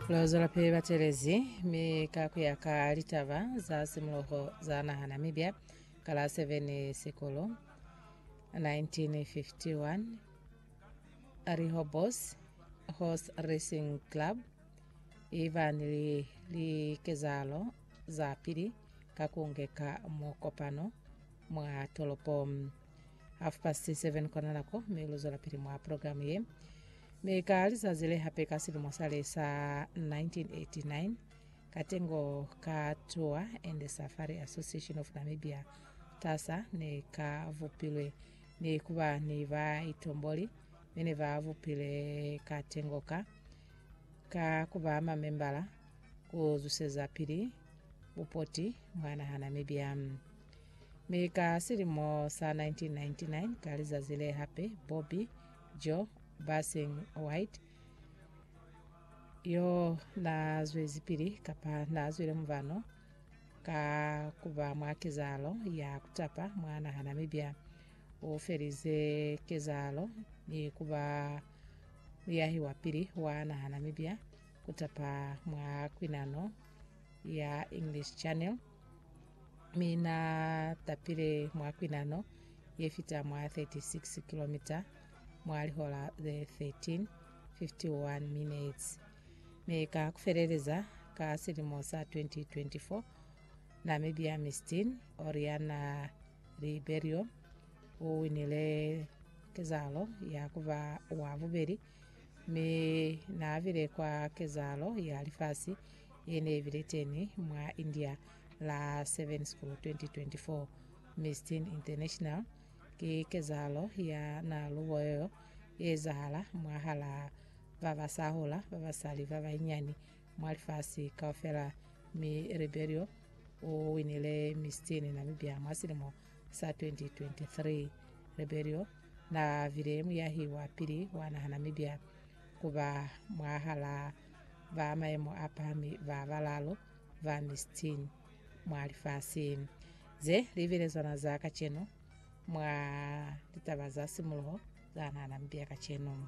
Lozolo pili batelezi mi ka ku ya ka litaba za simuloho za naha Namibia ka la 7 Sikulo 1951 Rihobos Horse Racing Club iba ni li- likezahalo za pili ka ku ngeka mukopano mwa tolopo Half past 7 kona lako me luzola pili mwa program ye. Me ka lizazi le hape ka silimo sa le sa 1989 katengo ka Tour and Safari Association of Namibia tasa ne ka vupilwe ne kuba ni ba itomboli mene ba vupile katengo ka ka kuba mamembala kuzuseza pili bupoti mwana ha Namibia. Mi ka silimo sa 1999 ka lizazi le hape, Bobby, Joe, Basing White yo na zwezipili kapa na zwile muvano ka kuba mwa kezahalo ya kutapa mwa naha Namibia. U felize kezahalo ni kuba muyahi wa pili wa naha Namibia kutapa mwa kwinano ya English Channel. mi na tapile mwa kwinano ye fita mwa 36 kilomita mwa lihola ze 13 51 minutes mi ka kufeleleza ka silimo sa 2024 namibia mistin oriana riberio o winile kezalo ya kuba wa bubeli Mi naabile kwa kezahalo ya lifasi yene ibile teni mwa India la 7 School 2024 Miss Teen International. Ki kezahalo ya nalubo yoyo yeezahala mwahala babasahula babasali babainyani mwa lifasi kaufela mi Ribeiro uwinile Miss Teen Namibia mwa silimo sa 2023, Rebelio na bile muyahi wa pili wa naha Namibia ku ba mwahala ba maemo a pahami ba balaalu ba mis 10 mwa lifasi. Ze li bilezwana za kacenu mwa litaba za simuluho za naha Namibia kacenu.